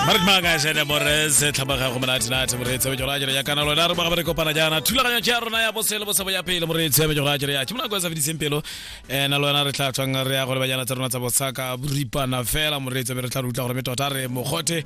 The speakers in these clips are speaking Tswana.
ba re tmaka jene morese tlhabaga go monate nate moreetsi wa jora jere ya kana lona re ba re kopana jana thulaganyo tša rona ya bosele bosebo ya pele moreetsi wa jora jere ya ke mona go sa fediseng pelo eh na lona re tla tswang re ya go le banyana tsa rona tsa bosaka boripana fela moreetsi re tla re utla gore me tota re mogote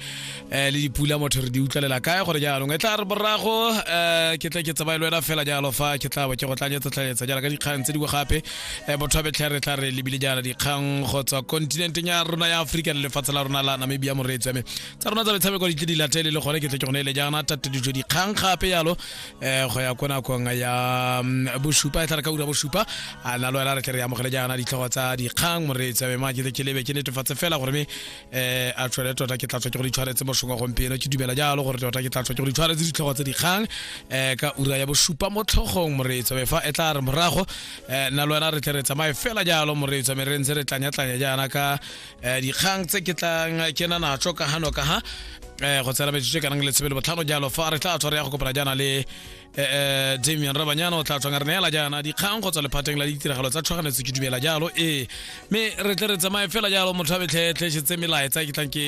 eh le dipula motho re di utlwalela kae gore jaanong e tla re borago eh ke tla ke tsamaye le wena fela jalo fa ke tla ba ke go tlanyetsa tlanyetsa jalo ka dikgang tse dingwe gape eh, bothabetlhere tla re lebile jaana dikgang go tswa kontinenteng ya rona ya aforika le lefatshe la rona la namibia moreetsi ame tsa rona tsa metshameko di tle di latele le gone ke tle ke gone ele jaana tatedijo dikgang gape yalo eh, go ya ko nakong ya mm, bosupa e tla re ka ura bosupa a na le wena re tle re amogele jaana ditlhogo tsa dikgang moreetsi ame ma ke tle ke lebe ke netefatse fela gore me eh a tshwere tota ke tla tswa ke go ditshwaretse mosong wa gompieno ke dumela jalo gore tota ke tla tswa ke go ditshwaretse ditlhogo tse dikgang eh ka ura ya bosupa mo tlhogong moreetso fa e tla re morago eh nna le wena re tle re tsamaye fela jalo moreetso me re ntse re tlanyatlanya jaana ka eh, dikgang tse ke tlang ke na natso ka hano ka ha eh go tsela metsotso e kanang le tshebele botlhano jalo fa re tla tshware ya go kopana jaana le Eh, eh, damian rabanyana o tla tswang re neela jaana dikgang go tswa lephateng la ditiragalo tsa tlhoganetso ke dumela jalo ee mme re tle re tsamaye fela jalo motho a betlhetlhesetse melaetsa ke tlang ke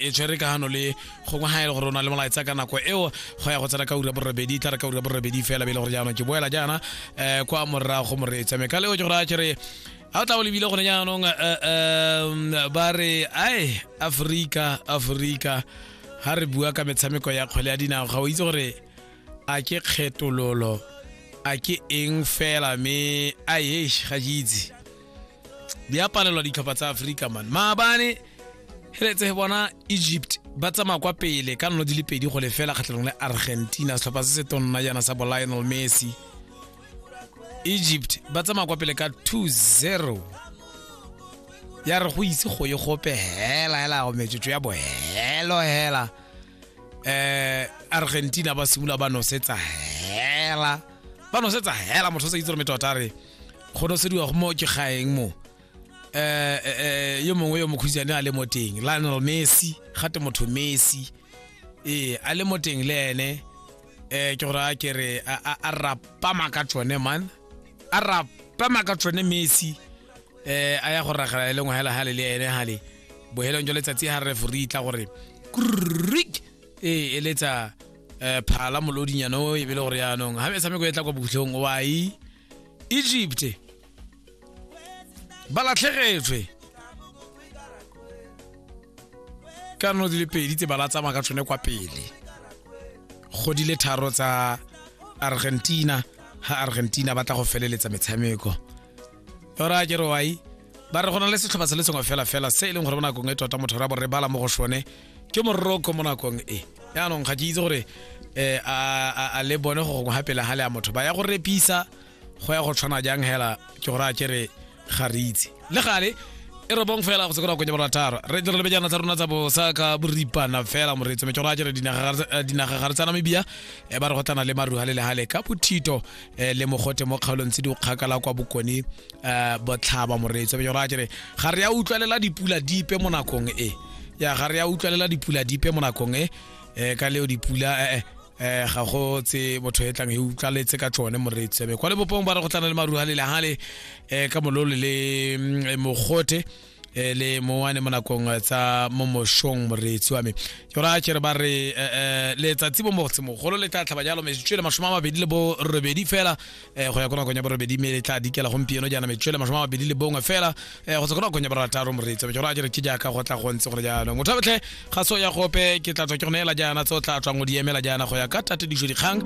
e tshwere kagano le gongwe ga ele gore o na le molaetsa ka nako eo go ya go tsena ka ura borobedi tla re ka ura borobedi fela be e le gore jaanong ke boela jaana um eh, kwa morago moreetsa mme ka leo ke gore a kere ga o tla o lebile gone jaanong um ba re ai aforika aforika ga re bua ka metshameko ya kgwele ya dinao ga o itse gore a ke kgetololo a ke eng fela me a yesh ga ke itse di a palelwa ditlhopha tsa aforika man maabane heletse bona egypt ba tsamaya kwa pele ka nno di le pedi go lefela kgatlhanong le argentina setlhopha se se tonna jaana sa bolionel messi egypt ba tsamaya kwa pele ka 2-0 ya re go ise go ye gope hela hela go metsotso ya bohelo hela eh argentina ba simolola ba nosetsa hela ba nosetsa hela motho o sa itse gore metota a re go nosediwa go mo ke gaeng mo eh eh, eh, yo mongwe yo mokhutsane a le mo teng lionel messi gate motho messi ee a le mo teng le ene eh ke gore a ke re a- a a rapama ka tsone man a rapama ka tsone messi eh a ya go ragela e lengwe hela hale le ene hale bohelong jwa letsatsi ha re furi tla gore krik e eletsa eh phala molodinyana o e bile gore yaanong ha metshameko e tla kwa botlhong wa e Egypt ba latlhegetswe ka no di le pedi tse ba la tsamaya ka tsone kwa pele go di le tharo tsa Argentina ha Argentina ba tla go feleletsa metshameko ora ke re wai ba re go na le setlhopha se le sengwe fela fela se e leng gore mo nakong e tota motho ra borre bala mo go sone ke moroko mo nakong e yaanong ga ke itse gore um a le bone go gongwe gapele ga le ya motho ba ya go repisa go ya go tshwana jang hela ke gore a ke re ga re itse le gale e re bong fela go se konya borataro re tle re lebe jana tsa rona tsa bosa ka boripana fela moreetso me ke gore a kere eh, dinaga ga re tsana mebia e ba re go tana le maruha le lehale ka bothito eh, le mogote mo kgaolong tse di kgakala kwa bokone eh, botlhaba moreetso be jora jere ga re ya utlwalela dipula dipe mo nakong e ya ga re ya utlwalela dipula dipe mo nakong e eh, ka leo dipula eh, eh, eh ga go tse motho e tlang e utlwaletse ka tsone moreetso be kwa lebopong ba re go tlana le maruhalele hale eh, ka mololo le mm, eh, mogote e le mowane mo nakong tsa mo moshong moreetsi wa me ke gore a kere ba re letsatsi bo mogolo le tla tlhaba jalo metsotso le masome a mabedi le bo robedi fela go ya ko nakong ya borobedi mme le tla dikela gompieno jaana metsotso le masome a mabedi le bongwe fela go tswa ko nakong ya borataro moreetsi wa me ke gore a kere ke jaaka go tla go ntse gore jaanong motho botlhe ga se o ya gope ke tla tswa ke go neela jaana tse o tla tswang o di emela jaana go ya ka tatediso dikgang